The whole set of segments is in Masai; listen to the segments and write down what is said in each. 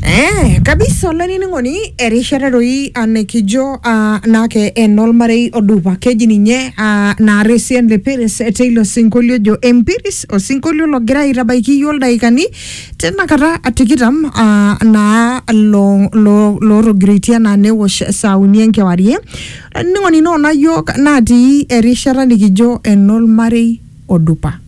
Eh, kabisa olainining'oni erishata doi ah, nikijo ah, naake enolmarei odupa keji ninye ah, naaresian le Peres teilo sinkolio ojo empiris osinkolio logira aitabaiki iyio ildaikani tinakata tikitam ah, naa lo- lo- lootogiroitie anaa newosh saa uni enkewarie olainining'oni noona yiok natii erishata nikijo enolmarei odupa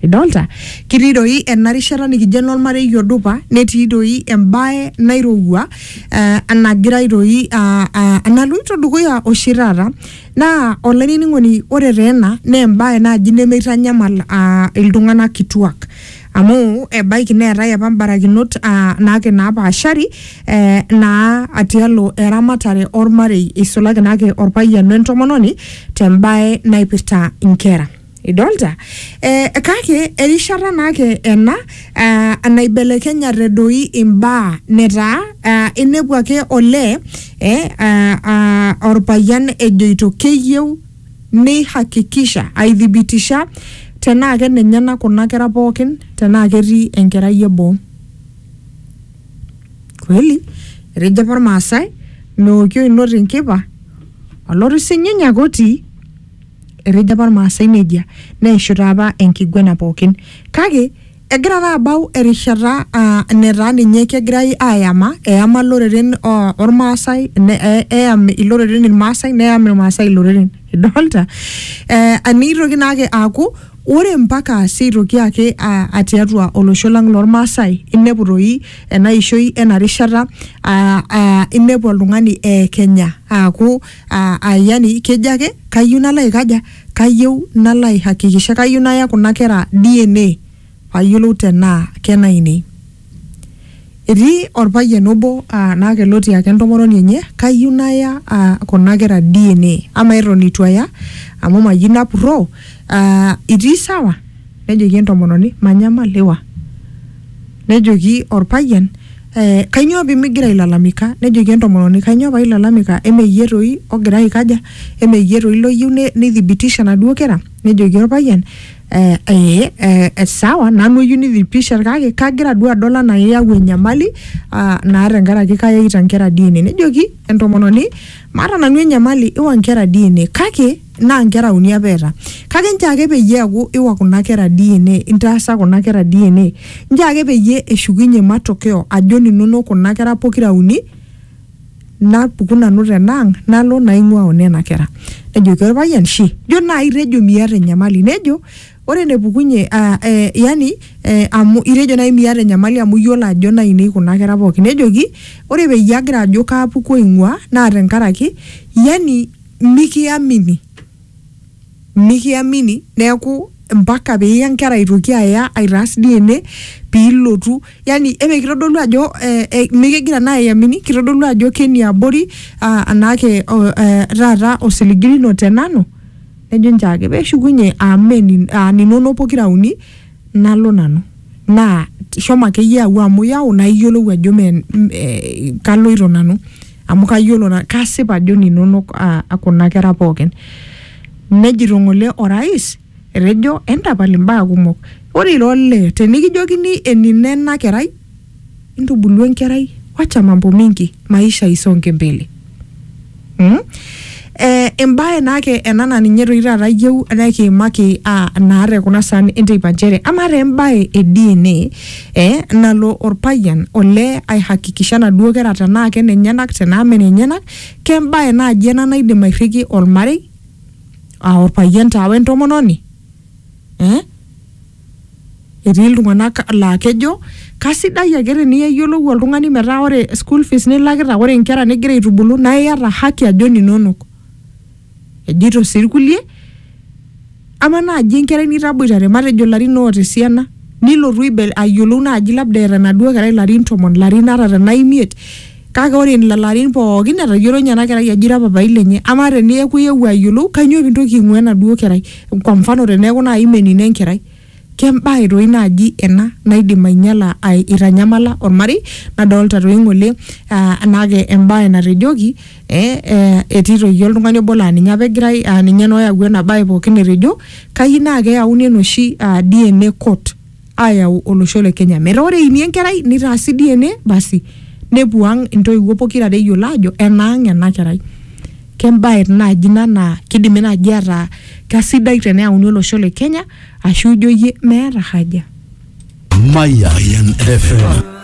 idolta kitii doi ena rishata nikijo enormarei odupa netii doi embae nairowua eh, enagirai doi ah, ah, enaloito dukuya oshi taata naa olainining'oni ore taa ena naa embae naaji nemeitanyamal ah, iltung'anak kituak Amu ebaiki neetae apa mbarakinot aa naake naapaashari eh, naa tialo eramatare ormarei eisulaki naake orpayian we ntomononi te mbae naipirta inkera. Idolta? Eh, kake erishata naake ena eh, naibelekenyate doi imbaa netaa eh, inepu ake olee eh, ah, ah, orpayian ejoito keyieu neihakikisha, aithibitisha, tenaa kenenyena kuna kera pooki tenaa ketii enkerai e boo. Kweli, etejo apa Ilmaasai, meoki oinot inkipa, olotu sinyiny ake otii. Etejo apa Ilmaasai neijia, neishu taa apa enkiguena pooki. Kake, Egira taa abau erishata aa netaa ninye kegirai ayama, eyama loreren o- ormaasai, ne- e- eyam iloreren irmaasai, neyam irmaasai iloreren. Idolta? Eh, nitoki naake aaku, ore mpaka si aitoki ake a- a tiatua olosho lang' lormaasai, inepu toi enaishoi enarishata, ah ah inepu oltung'ani eekenya. Aaku ah yani kejo ake, kayieu nalo aikaja? Kayieu nalo aihakikisha, kayieu naya kuna kera DNA payiolou tenaa kenainei. Etii orpayian obo naa keloti ake entomononi enye, kayieu naya kuna kera DNA. Amaa eton itu aya, amu mayieu napurroo, itii sawa? Nejoki entomononi, manyamal iwa. Nejoki orpayian Eh, kainyoo pimigira ailalamika? Nejoki entomononi, kainyoo pailalamika? Eme iyie toi ogira aikaja? Eme iyie toi loyieu ne- neithibitisha naduo kera? Nejoki olpayian, eh, ee, eh, sawa nanu eyieu neithibitisha kake kagira duo adol anaa iyau enyamali ah, naa tenkaraki kayaita nkera DNA. Nejoki entomononi, maata nanu enyamali iwa nkera DNA kake... naa nkera uni apa eeta kake nchoo ake peyie eeku iwa kuna kera DNA intaasa kuna kera DNA nchoo ake peyie eshukunye matokeo ajo ninonok kuna kera pokira uni napuku nanu tenaang nalo naing'ua onena kera nejoki orpayian shi jo naai itejo miata enyamali nejo ore enepukunye ah, eh, yani eh, amu itejo naai miata enyamali amu iyiolo ajo nainei kuna kera pookin nejoki ore peyie agira ajo kaapuku aing'ua naa tenkaraki yani mikiamini mikiamini neeku mpaka piiya nkera aitoki aya aitaas DNA piilotu yani eme kitodolu ajo eh, eh, mikigira naa aiamini kitodolu ajo keniabori ah, anaake oh, eh, taata osiligi lino tenanu nejo nchoo ake peshukunye amen aninonok pokira uni nalo nanu naa t- shomo akeyie au amu yau naa iyiolou ajo me m- eh, kaloito nanu amu kayiolo na kasip ajo ninonok ah, kuna kera pookin nejito ng'ole orais etejo entapal imbaa kumok ore ira olee tenikijokini enino ena kerai intubulu enkerai wacha mambo mingi maisha isonge mbele mm? eh, embae naake ena naa ninye toi taata iyieu nekiimaki ah, naa te kuna saan enteipa nchere amaa taa embae e DNA eh, nalo orpayian olee aihakikisha naduo kera tenaa kenenyenak tenaa menenyenak kembae naaji ena naidim airriki ormarei ah, orpayian taa wentomononi eh? Etii iltung'anak laa kejo kasidai ake teniyiolou oltung'ani metaa ore school fees nilakita ore inkera nigira aitubulu naa iyata haki ajo ininonok. Ejito sii irkulie ama naaji enkerai nitaboitare matejo ilarin oota esiana nilotu aibel ayiolou naaji labda eeta enaduo kerai ilarin tomon, ilarin ata tenaa imiet Kake ore in lelo arin pooki etayiolo ninye ena kerai ajo ira papai lenye. Amaa teneeku iewuo ayiolou kanyoo pintoki aing'ua enaduo kerai? Kwa mfano teneeku naai imenino enkerai. Kembae toi naaji ena naidim ainyala aitanyamala olmarei nadolita toi ng'ole naa embae natejoki ee etii toi iyie oltung'ani obo laa ninye apa egirai aa ninye naa oyawua ena bae pooki etejo kayieu naa keyauni enoshi DNA court. aayau olosho le Kenya metaa ore eini enkerai nitaasi DNA basi nepuo ang intoiwuo pokira are eyiolo aajo enaang ena kerai. Kembae naaji ina naa kidimi naaji ataa kasidai teneyauni olosho le Kenya ashu ijo iyie meeta haja. Mayan FM.